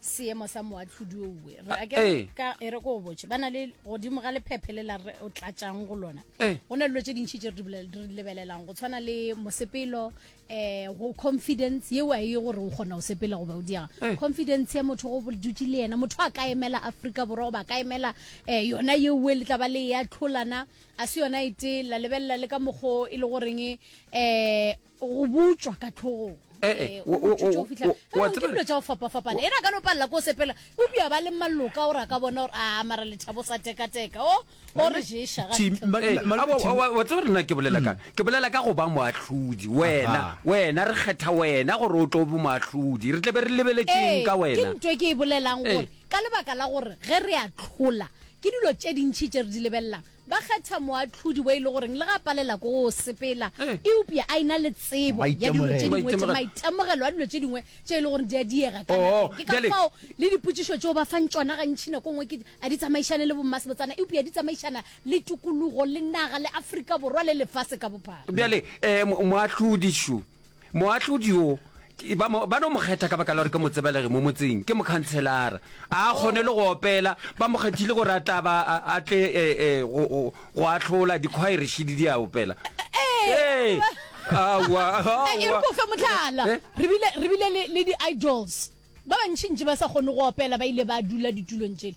seemo sa moatlhodi oue re a ke ka e re ko botse ba na le godimo ga lephephe le la re o tlatsang go lona go na le dilo tse dintšhi tse re di lebelelang go tshwana le mosepelo um go confidence yeo a ye gore o kgona go sepela goba o diaga confidence ya motho go dutse le yena motho a ka emela aforika borwa goba a ka emela um yona yeoe le tla ba le ya tlholana a se yona e tee la lebelela le ka mokgo e le goreng um go botšwa ka tlhogong Eh, eh, o- o- o- o- o a tseba- dilo tša go fapafapana ena ka no palela ko sepela o bja ba le maloka gore a ka bona gore a mara lethabo sa tekateka o o re ješa ga Tim- ntlha. Ma- Eh, ma- a- wa- Tim- wa- wa tseba rena ke bolela kang ke bolela ka go ba moahlodi wena Aha. wena re kgetha wena gore o tlo bo moahlodi re tle be re lebeletseng Ee, ka ke wena nto e ke e bolelang gore Ee. ka lebaka la gore ge re a tlhola ke dilo tše dintšhi tše re di lebelelang Ba kgetha moahlodi wo e le goreng le ga a palela ko go sepela, eupša a ena le tsebo ya dilo tše dingwe, tše maitemogelo a dilo tše dingwe tše e le goreng di a diega ka nageng. Ke ka fao le dipotšišo tšeo ba fang tšona gantši nako nngwe ke, a di tsamaišane le bommasebotsana, eupša di tsamaišana le tokologo, le naga, le Afrika Borwa le lefase ka bophara. Bjale, moahlodi, šo, Moahlodi yo, ke, ba, mo, ba no mo kgetha ka baka la gore ke motsebelegi mo motseng, ke mokhanselara. A a kgone le go opela, ba mo kgethile gore a tla ba a, a tle e, e, go, go, go ahlola, dikhwaerešidi di a opela. Ee! Aowa, E re aowa. ko fe mohlala. Eh? Re bile, re bile le, le di-idols. Ba bantšintši ba sa kgone go opela ba ile ba dula ditulong tšele.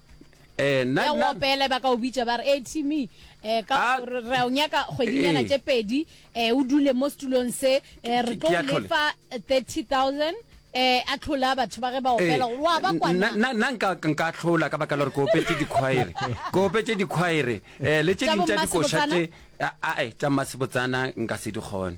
Eh, nna- ya go nna- opela ba ka o bitša ba re e tme um ka Ah. gore re a o nyaka kgwedinyana Eh. tše pedi um o dule mo setulong se um re Ke- tlo ke a o tlhola. lefa thirty thousand um a tlhola batho ba ge ba opela gore wa ba kwana nna nka nka tlhola ka baka la gore ke opetse dikgwaere ke opetse dikgwaere um le tše Tša ding tša bommasebotsana? dikošate ae tša mmasebotsana nka se di kgone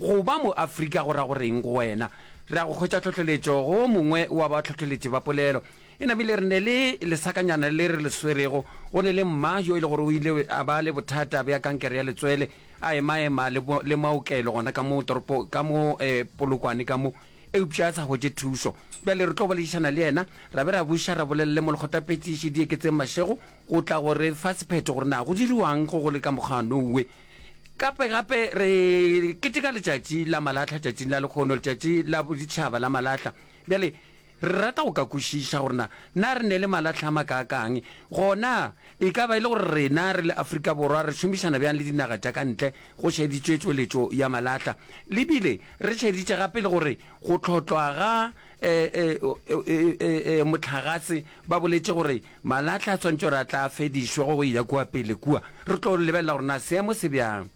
Go ba mo-Afrika go ra go reng go wena? Re a go hwetša tlhohleletšo go o mongwe wa bahlohleletši ba polelo. E namile re ne le lesakanyana le re le swerego. Go ne le mma yo e le gore o ile a ba le bothata bja kankere ya letswele, a emaema le, le maokelo gona ka mo toropo, ka mo eh, Polokwane ka mo, eupša a sa hwetše thušo. Bjale re tlo boledišana le yena, ra be ra buša ra bolelele molekgotapetšiši Dieketseng Mashego go tla go re fa sephetho gore na go diriwang go go le ka mokgwanowe. Gape gape re keteka letšatši la malahla, tšatšing la lekgono, letšatši la boditšhaba la malahla. Bjale re rata go ka kwešiša gore na na re ne le malahla a makaakang, gona e ka ba e le gore rena re le Afrika Borwa re šomišana bjang le dinaga tša ka ntle go šeditšwe tšweletšo ya malahla. Le bile re šeditše gape le gore go tlhotlwa ga mohlagase ba boletše gore Malahla a swantšo re a tla fedišwa go ya kua pele kua. Re tlo lebelela gore na seemo se bjang.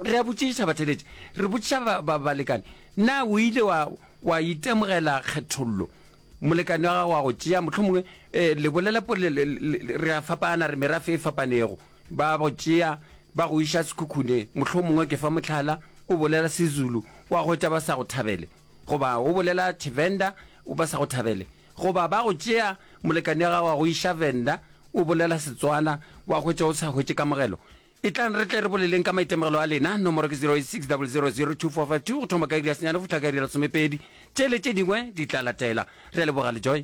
Re a botšiša batheeletši, re botšiša ba, ba, balekane, Na o ile wa, wa itemogela kgethollo? Molekane wa gago a go tšea, mohlomongwe, e, le bolela pole, le, le, le, re a fapana, re merafe e fapanego. Ba go tšea, ba go iša sekhukhuneng. Mohlomongwe, ke fa mohlala, o bolela Sezulu, wa hwetša ba sa go thabele. Goba o bolela Tshivenda o ba sa go thabele. Goba ba go tšea molekane wa gago wa go iša Venda o bolela Setswana wa hwetša o sa hwetše kamogelo. Etlang re tle re boleleng ka maitemogelo a lena. Nomoro ke 0860002452 go thoma ka iri ya senyane go fihla ka iri ya lesomepedi. Tše le tše dingwe di tla latela. Re a leboga Lejoy.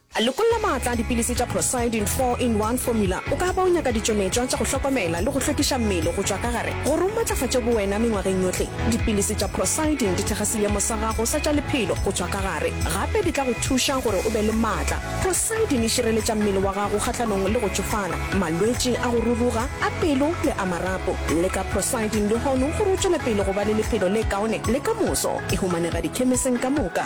Lokolla maatla a dipilisi tša Procyidin 4 in 1 Formula. O ka ba o nyaka ditšometšwa tša go hlokomela le go hlwekiša mmele go tšwa ka gare gore o matlafatše bowena mengwageng yohle. Dipilisi tša Procyidin di thekga seemo sa gago sa tša lephelo go tšwa ka gare. Gape di tla go thuša gore o be le maatla. Procyidin e šireletša mmele wa gago kgahlanong le go tšofala, malwetši a go ruruga, a pelo le a marapo. Leka Procyidin lehono gore o tšwele pele go ba le lephelo le kaone le ka moso. E humanega dikhemeseng ka moka.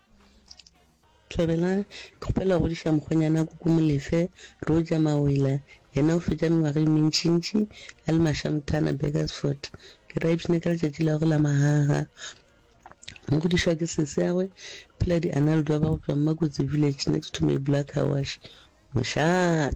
Thabela, Ke kgopela go godiša mokgonyana Kuku Molefe, Roger Mawela, yena o fetša mengwaga e mentšintši a le mašamthana Burgersfort. Ke ra ipshina ka letšatši la gagwe la magaga. Mo godišwa ke seseagwe, Phela Dianaldo ba go tšwa Mmakotsi Village next to May Black Car Wash, Mošate.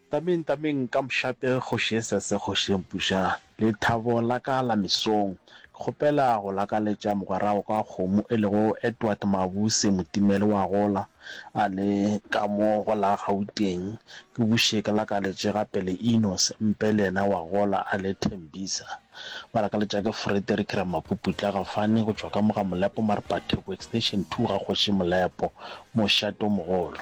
Tameng, tameng ka mošate Kgoši Esese, Kgoši Empuša, lethabo la ka la mesong. Ke kgopela go lakaletša mogwerao ka kgomo e lego Edward Mabuse Motimeli wa gola a le ka mo go la Gauteng, ke buše ke lakaletše gape le Enos Mpe le yena wa gola a le Tembisa. Ba lakaletša ke Frederick Ramapuputla Gafane go tšwa ka mo ga Molepo Marpatebo Extension Two ga Kgoši Molepo, mošate o mogolo.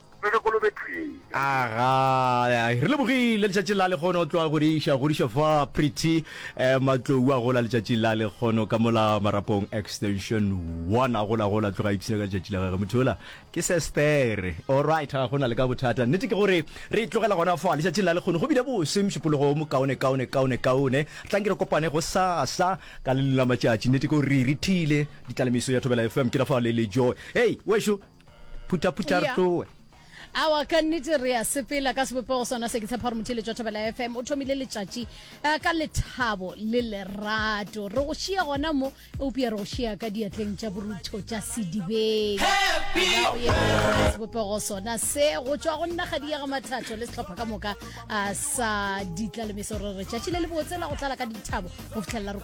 Re ge kolobe thwii. Agaa, re lebogile letšatši la lekgono tloa go di iša godiša fa Pretty eh, Matlou a gola letšatši la lekgono ka mola marapong extension 1 a gola gola tloga ipshina ka letšatši la gage motho yola ke sestere alright ga gona le ka bothata nnete ke gore re tlogela gona fa letšatšing la lekgono go bile bose mšupologo mo kaone kaone kaone kaone tlang ke re kopane go sasa ka le la matšatši nnete ke gore re rithile ditlalemiso ya thobela fm ke la fa le le joy hey wešo Phutha phutha re tloe. Awa ka nnete re a sepela ka sebopego sona se ke tshepa gore motheletšwa thobela fm o thomile letšatši eh, ka lethabo le lerato re go šia gona mo eupša re go šia ka diatleng tša borutho tša sedibeng sebopego sona se go tšwa go nna ga diega mathatho le sehlopha ka moka ah, sa ditlalemeso re re tšatši le le botse la go tlala ka dithabo go fitlhelela re